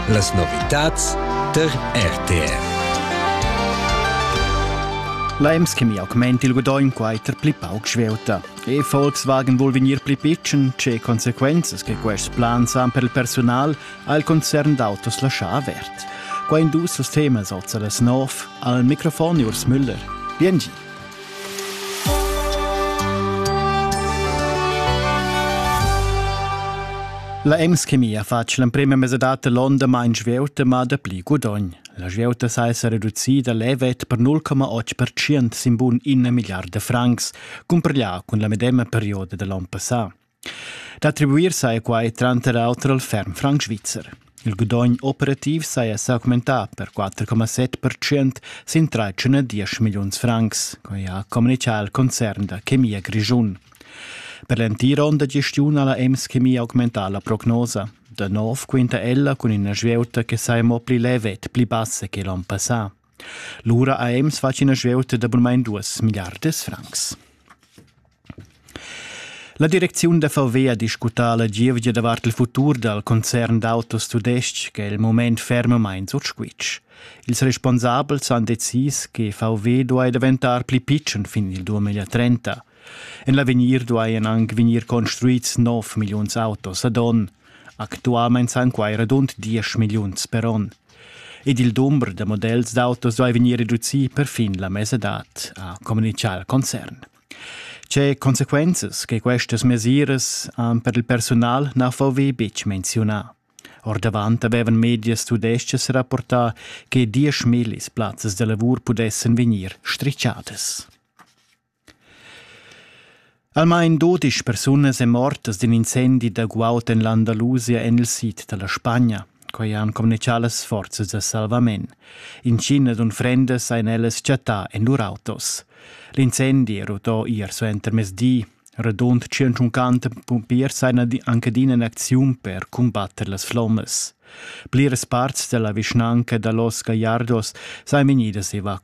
Las novitads tar RTR. L'EMS che mi augment il gudaugn quai ter pli pauc svelta. E Volkswagen vuol vegnir pli pitschen, ce consequenzas che quest plan san per il personal ha il concern d'autos lascià avert. Qua in dus temas alza las nov al microfon Urs Müller. Bien La Ems-Chemia fatg l'emprema mesa data l'onda main svieuta ma dapli gudogn. La svieuta sa esser reducida levet per 0,8% sin bun 1 miliarda francs, cumparglià cun la medema perioda da l'on passà. D'attribuir saja quai tranter auter al ferm franc svizzer. Il gudogn operativ saja s'augmentà per 4,7 percent sin 310 milliuns francs, quai ha communitgà il concern da chemia grischun. Per l'entira onda gestiun ha la EMS Chemia augmentà la prognosa. Da nov quinta ella cun ina svieuta che saja mo pli levet, pli bassa che l'onn passà. Lura ha Ems fatg ina svieuta da bunmain duas milliardas francs. La direcziun da VW ha discutà la gievgia davart il futur dal concern d'autos tudestg che è il mument fermamain sut squitsch. Ils responsabels han decis che VW duai daventar pli pitschen fin il 2030. En l'avegnir duajan anc vegnir construids 9 milliuns autos ad onn. Actualmain san quai radund 10 milliuns per onn. Ed il dumber da models d'autos duai vegnir reducì perfin la mesadad, ha communitgà il concern. Tge consequenzas che questas mesiras han per il personal na VW betg menziunà. Ordavant avevan medias tudestgas rapportà che dieschmillis plazzas da lavur pudessan vegnir strichadas. Almain dodisch persunas èn mortas d'in incendi da guaud en l'Andalusia en il sid da la Spagna. Quai han communitgà las forzas da salvament. Intginas unfrendas han ellas chattà en lur autos. L'incendi è rutò ier suentermezdi. Radund 150 pumpiers han anche adina in acziun per cumbatter las flommas. Pliras parts della vischnanca da Los Gallardos sajan vegnidas evacuadas.